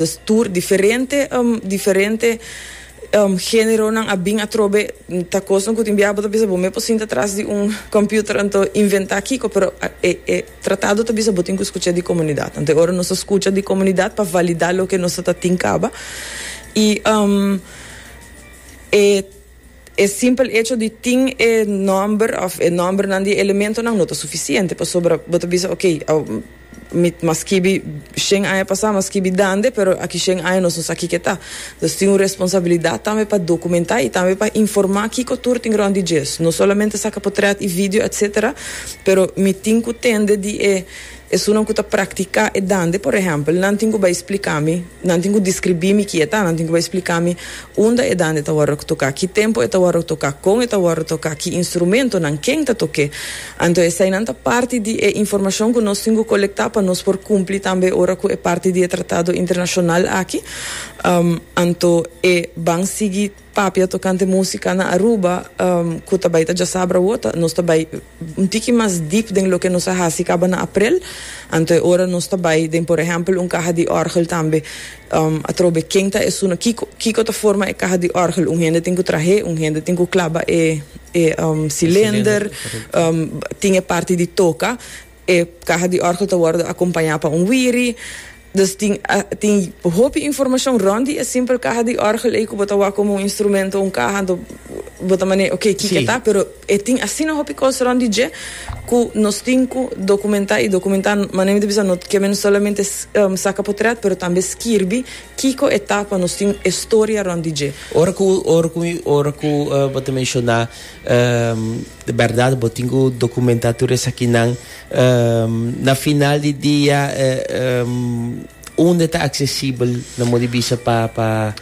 Nos tur diferente, diferente generonan a bin atrobe, ta kosnan ku tin biaha bo ta bisa bo mes por sinta tras di un computer anto inventá kiko, pero e e tratado ta bisa bo tin ku skucha di komunidat. Anto e ora nos ta skucha di komunidat pa validá loke nos ta tin kaba i e. E simpel echo di tin e nòmber òf e nòmbernan di e elementonan no ta sufisiente pasobra bo ta bisa oke, mi mas skibi shen aña pasá, mas skibi dande, pero aki shen aña nos no sa kiko e ta. Nos tin un responsabilidat tambe pa dokumentá i tambe pa informá kiko tur tin rònt di djes. No solamente saka potrèt i vidio, etsetera, pero mi tin ku tende di e Esunnan ku ta praktiká e dande, por ehèmpel, nan tin ku bai splika mi, nan tin ku deskribí mi ki e ta, nan tin ku bai splika mi unda e dande ta wòrdu toká, ki tempu e ta wòrdu toká, kon e ta wòrdu toká, ki instrumentonan, ken ta tok'é. Anto eseinan ta parti di e informashon ku nos tin ku kolektá pa nos por kumpli tambe ora ku e parti di e tratado internashonal aki. Anto e ban sigui. Papia tokante músika na Aruba ku ta bai ta djasabra wota. Nos ta bai un tiki mas dip den loke nos a hasi kaba na aprel. Anto e ora nos ta bai den por ehèmpel un kaha di òrgel tambe. Atrobe ken ta esun? Kiko kiko ta forma e kaha di òrgel? Un hende tin ku trah'é, un hende tin ku klaba e e silender, tin e parti di toka. E kaha di òrgel ta wòrdu akompañá pa un wiri. Dus tin tin hopi informashon rònt di e simpel kaha di òrgel ei ku bo ta wak komo un instrumento, un kaha. Anto bo ta manera oke kiko ta, pero e tin asina hopi kos rònt di dje ku nos tin ku dokumentá i dokumentá. Manera mi ta bisa no ke men solamente saka potrèt pero tambe skirbi kiko e ta pa nos tin e storia rònt di dje. Ora ku ora ku ora ku bo ta menshoná. De berdad bo tin cu documenta tur esakinan. Na final di dia unda ta accesibel nan mudi bisa pa pa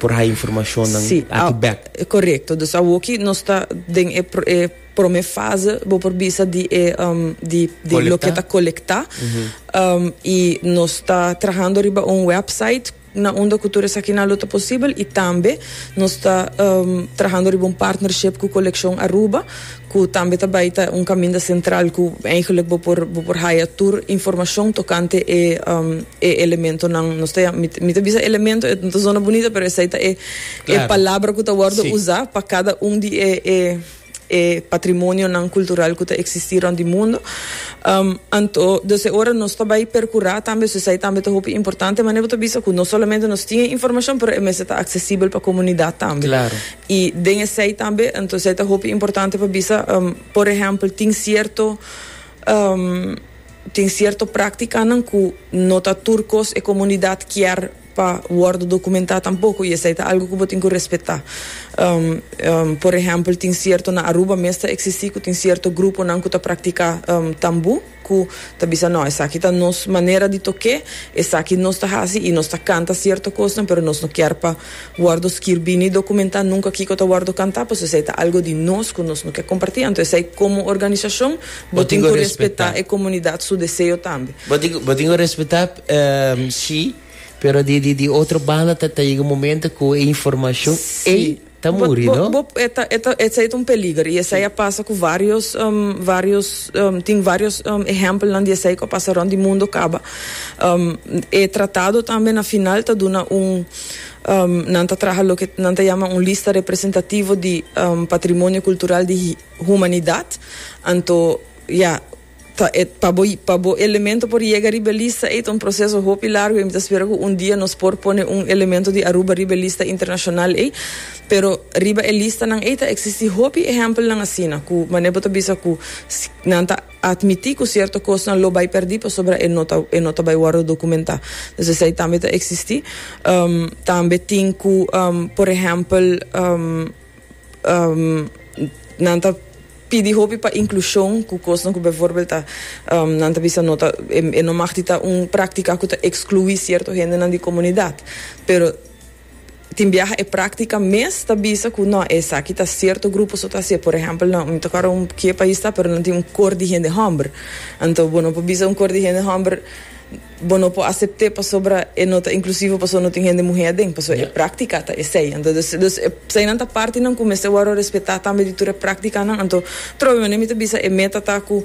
por haya informacionnan Si, aki a, bek? correcto. Dus awoki nos ta den e e prome fase bo por bisa di e di di loke Colecta. ta colecta y nos ta trahando riba un website. na unda ku tur esaki nan lo ta posibel i tambe nos ta trahando riba un partnership ku Kolekshon Aruba ku tambe ta bai ta un kaminda sentral ku eigenlik bo por bo por haya tur informashon tokante e e elementonan nos ta yama mi mi ta bisa elemento e no ta zona bunita pero esei ta e e palabra ku ta wòrdu usa pa kada un di e e e patrimonionan kultural ku ta eksistí rònt di mundu. Anto, dus e ora nos ta bai perkurá tambe, so esei tambe ta hopi importante. Mane bo ta bisa ku no solamente nos tin e informashon, pero e mester ta aksesibel pa komunidat tambe. Klaro. I den esei tambe, anto esei ta hopi importante pa bisa, por ehèmpel, tin sierto tin sierto práktikanan ku no ta tur kos e komunidat kier. pa wòrdu dokumentá tampoko i esei ta algu ku bo tin ku respetá. Por ehèmpel tin sierto na Aruba mes ta eksistí ku tin sierto gruponan ku ta praktiká tambú ku ta bisa nò esaki ta nos manera di tok'é, esaki nos ta hasi i nos ta kanta sierto kosnan pero nos no kier pa wòrdu skirbí ni dokumentá nunka kiko ta wòrdu kantá pasobra esei ta algu di nos ku nos no ke kompartí anto esei komo organisashon bo tin ku respetá e komunidat su deseo tambe. Bo tin ku respetá. Sí, pero di di di otro banda ta ta yega un momento cu e informacion ey Sí. ta Bo- muri, bo- no? bo- e ta- e ta- Esei ta un peliger y esei a pasa cu varios, em, varios, em, tin varios em, ehempelnan di esei cu a pasa rond di mundo caba. Em, e tratado tambe na final ta duna un, em, nan ta traha loke nan ta yama un lista representativo di em, patrimonio cultural di hi- humanidad. Anto, ya, Ta e pa bo pa bo elemento por yega riba e lista ei ta un proseso hopi largu ei mi ta spera ku un dia nos por pone un elemento di Aruba riba e lista internashonal ei pero riba e listanan ei ta eksisti hopi ehèmpelnan asina ku manera bo ta bisa ku nan ta atmití ku sierto kosnan lo bai pèrdí pasobra e no ta e no ta bai wòrdu dokumentá entonces esei tambe ta eksisti tambe tin ku por ehèmpel. Nan ta pidi hopi pa inklushon ku kosnan ku befòrbèl ta nan ta bisa no ta e no mag di ta un praktika ku ta ekskluí sierto hendenan di komunidat. Pero tin biaha e praktika mes ta bisa ku nò esaki ta sierto grupo so ta hasié. Por ehèmpel nan mi ta kòrda un ke pais ta pero nan tin un kor di hende hòmber. Anto bo no por bisa un kor di hende hòmber. Bo no por asepte pasobra e no ta inklusivo paso no tin hende muhe aden, paso e praktika ta esei. Anto des des e eseinan ta partinan ku mester wòrdu respetá tambe di tur e praktikanan. Anto trobe manera mi ta bisa e meta ta ku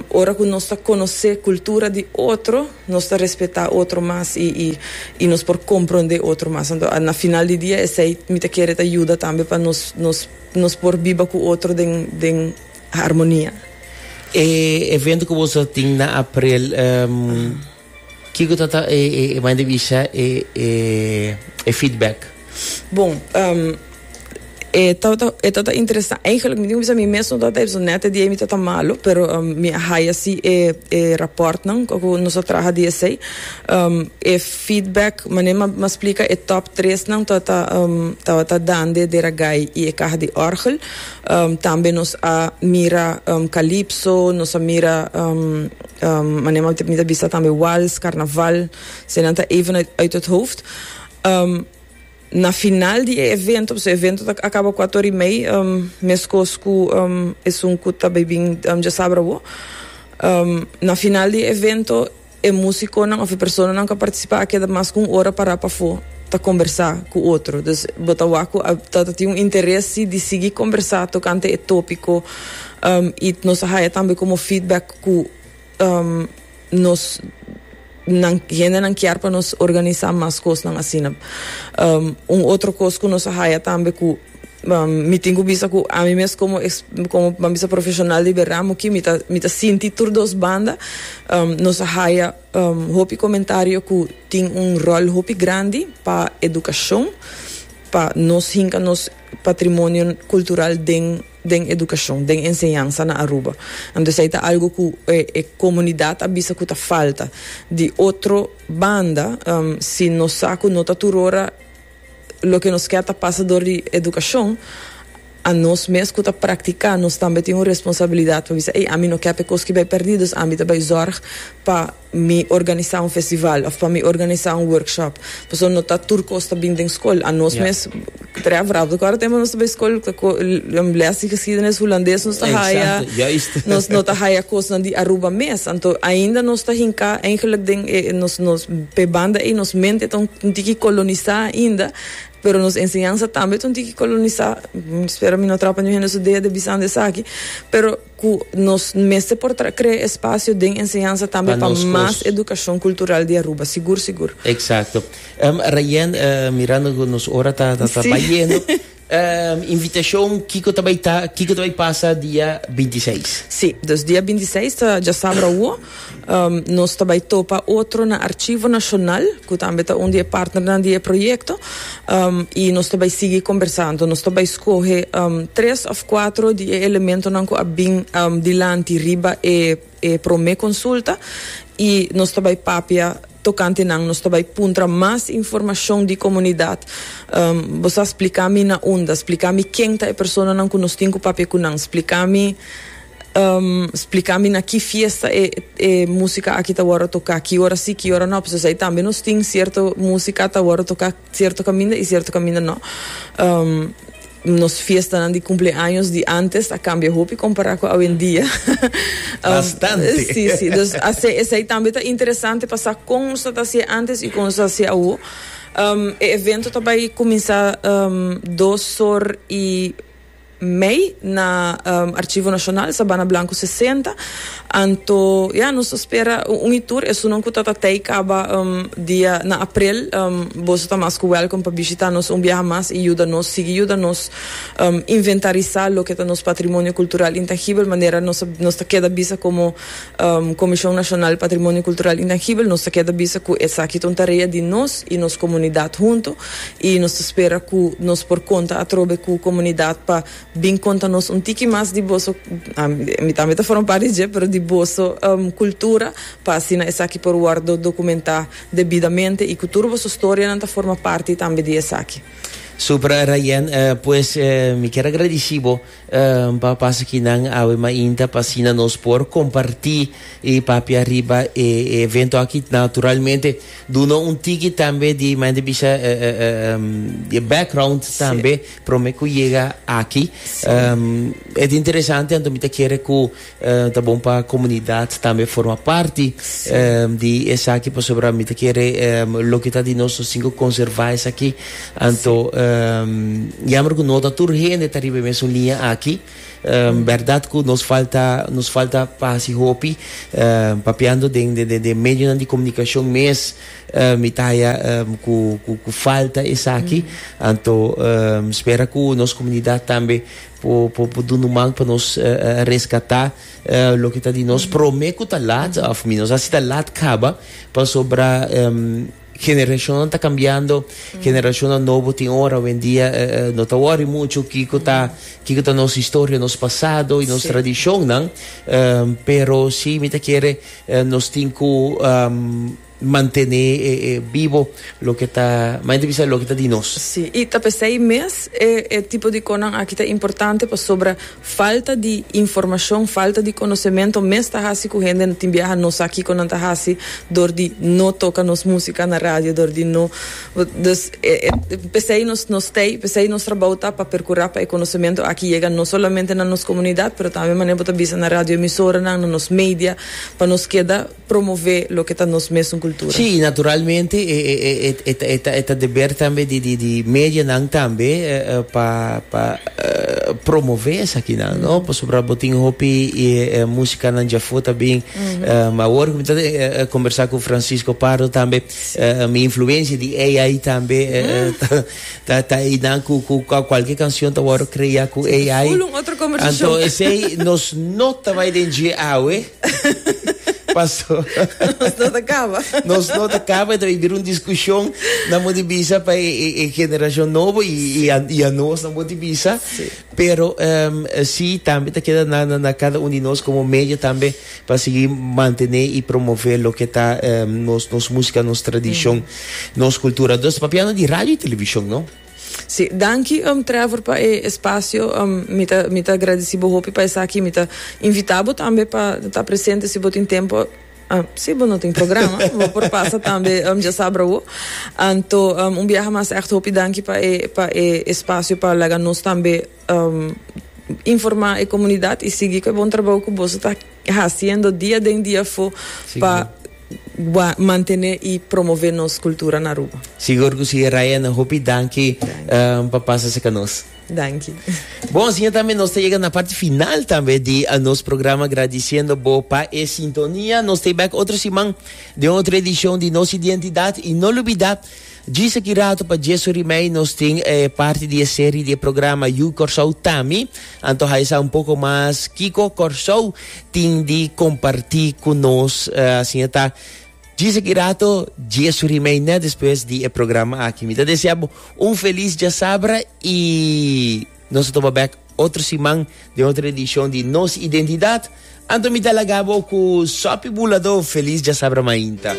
ora ku nos ta konosé kultura di otro nos ta respetá otro mas i i i nos por komprondé otro mas. Anto a na final di dia esei mi ta kere ta yuda tambe pa nos nos nos por biba ku otro den den. Harmonia. E evento ku boso ta tin na aprel, kiko ta ta e mane di bisha e feedback? Bon, e ta ta e ta ta interesante. Eigenlijk mi tin ku bisa mi mes no ta ta esaki nèt e dia ei mi ta ta malu, pero mi a haya si e e rapòrtnan ku nos a traha di esei. E feedback mane mi a splika e tòp tresnan tabata dande Deragai i e Kaha di Òrgel. Tambe nos a mira kalipso, nos a mira manera m'a mita a bisa tambe wals, karnaval, so e nan ta even uit het hoofd. Na final di e evento, pasobra e evento ta akaba kuat or i mei, meskos ku esun ku ta bai bin djasabra awo, na final di e evento, E musiconan of e personanan cu a participa a keda mas cu un ora para pafo ta combersa cu otro. Dus bo ta wak cu ta tin un interesi di sigui combersa tocante e topico y nos a haya tambe como feedback cu nos-nan, hendenan kier pa nos organisa mas cosnan asina. Un otro cos cu nos a haya tambe cu. Mi tin ku bisa ku ami mes komo es komo ban bisa profesional di berdad mo ki mi ta mi ta sinti tur dos banda nos a haya hopi komentario ku tin un ròl hopi grandi pa edukashon pa nos hinka nos patrimonio kultural den den edukashon den enseñansa na Aruba anto esei ta algu ku e komunidat a bisa ku ta falta di otro banda si nos sa ku no ta tur ora Loke nos ke ta pasa dor di edukashon, a nos mes ku ta praktiká nos tambe tin un responsabilidat pa bisa, ei, ami no kèp e kos ki bai pèrdí, dus ami ta bai zòrg pa mi organisá un festival òf pa mi organisá un workshop. Pasobra no ta tur kos ta bini den skol. A nos mes trèf rápido. Ku ora tempu nos ta bai skol ta lès di geskiedenis hulandes nos ta haya, nos no ta haya kosnan di Aruba mes. Anto ainda nos ta hinká, eigenlik den e nos nos. P'e banda ei nos mente ta un tiki kolonisá ainda, pero nos enseñansa tambe ta un tiki kolonisá. Spera mi no trapa niun hende su dea di bisando esaki, pero ku nos mester por krea espasio den enseñansa tambe pa mas edukashon kultural di Aruba. Sigur sigur. Eksakto. Rayen, mirando ku nos ora ta bayendo. Invitashon, Kiko ta bai ta? Kiko ta bai pasa dia binti i seis? Sí, dus dia binti i seis ta djasabra awo. Nos ta bai topa otro na Archivo Nacional, ku tambe ta un di e partnernan di e proyekto, i nos ta bai sigui kombersá. Anto nos ta bai skohe tres òf kuatro di e elementonan ku a bin dilanti riba e. e promé konsulta i nos ta bai papia tokante nan, nos ta bai puntra mas informashon di komunidat, bo sa splika mi na unda, splika mi ken ta e personanan ku nos tin ku papia ku nan, splika mi splika mi na ki fiesta e e musika aki ta wòrdu toká, ki ora si, ki ora no, pasobra esei tambe nos tin sierto musika ta wòrdu toká. Cierto caminda y cierto caminda no. Nos fiestanan di cumpleaños di antes a cambia hopi compara cu awendia. Bastante. Si, si. Dus asey, esey tambe ta interesante pa sa con nos ta hacié antes y con nos ta hacié awo. E evento ta bay cuminsa dos sor y. Mei na Archivo Nacional Sabana Blanco sesenta, anto ya nos ta spera un y tur esunnan cu ta ta tey caba dia na april, boso ta mas cu welcome pa bishita nos un biaha mas y yuda nos sigui yuda nos inventarisa loke ta nos patrimonio cultural intangibel manera nos ta keda bisa como Komishon Nashonal Patrimonio Kultural Intangibel, nos ta keda bisa ku esaki ta un tarea di nos i nos komunidat huntu i nos ta spera ku nos por konta atrobe ku komunidat pa bin konta nos un tiki mas di boso, mi tambe ta forma parti di dje, pero di boso kultura pa asina esaki por wòrdu dokumentá debidamente i ku tur boso storianan ta forma parti tambe di esaki. Super Rayen, pues mi kier agradisí bo. N por pasa ki nan awe mainta pa asina nos por kompartí i papia riba e evento aki. Naturalmente duna un tiki tambe di mainta bisha e background tambe prome ku yega aki. E ta interesante anto mi ta kere ku Ta bon pa comunidad tambe forma parti di esaki pasobra mi ta kere loke ta di nos nos tin cu conserva esaki anto yamber cu no ta tur hende ta riba e mesun liña aki berdad cu nos falta nos falta pa haci hopi papiando den den den medionan di comunicacion mes mi ta haya cu cu falta esaki anto spera cu nos comunidad tambe Por por dunu man pa nos rescata loke ta di nos. Prome cu ta laat, of minos asi ta laat caba, pasobra generacionnan ta cambiando, generacionnan nobo tin ora awendia no ta worry mucho kico ta kico ta nos historia, nos pasado y nos tradicionnan, pero si mi ta kere nos tin cu. Mantené bibo loke ta mas entrevista loke ta di nos. Sí, i ta p'esei mes e e tipo di conan aki ta importante pasobra falta di informacion, falta di conocemento mes ta haci cu hende no tin biaha no sa kico nan ta haci dor di no toca nos musica na radio, dor di no, dus e e p'esei nos nos stay, p'esei nos trabou ta pa percura pa e conocemento aki yega no solamente na nos comunidad pero tambe manera bo ta bisa na radio emisoranan, na nos media, pa nos keda. promove loke ta nos mesun kultura. Sí, i naturalmente e ta deber tambe di medianan tambe pa promove esakinan, no? Pasobra bo tin hopi musikanan dja afó ta bin. Awor ku mi ta kombersá ku Francisco Pardo tambe mi influensia di AI tambe ta einan ku kualke kanshon ta wòrdu kreá ku AI. Anto esei nos no ta bai den dje awe. Paso. Nos no ta caba. Nos no ta caba, entonces bira un discusión, na mo di bisa pa e, e, e generación novo y, y, a, y a nos na mo di bisa, sí. pero um, sí también te queda na, na, na cada uno de nos como medio también para seguir mantener y promover lo que está um, nos, nos música, nos tradición, mm. nos cultura. Entonces, papiano de radio y televisión, ¿no? Si, danki um Trevor pa e espacio, um mi ta mi ta agradeci bo hopi pa esaki, mi ta invita bo tambe pa ta presente si bo tin tempo, um si bo no tin programa bo por pasa tambe um djasabrowo, anto um un biaha mas echt hopi danki pa e pa e espacio pa laga nos tambe. Informá e komunidat i sigui ku e bon trabou ku boso ta hasiendo dia den dia afó pa mantené i promové nos kultura na Aruba. Sigur ku si, Raena. Hopi danki pa pasa sa ku nos. Danki. Bon, asin'e tambe nos ta yega na parti final tambe di nos programa gradisiendo bo pa e sintonia. Nos ta e bèk otro siman den otro edishon di Nos Identidat. I no lubidá Djis aki ratu pa dje su rimei nos tin e parti di e seri di e programa You Kòrsou Tami, anto haja sa un poko mas kiko Kòrsou tin di kompartí ku nos. Asin e ta. Djis aki ratu dje su rimei nèt despues di e programa aki. Mi ta desea bo un felis djasabra i nos ta topa bèk otro siman den otro edishon di Nos Identidat. Anto mi ta laga bo ku Sopi Buladó felis djasabra mainta.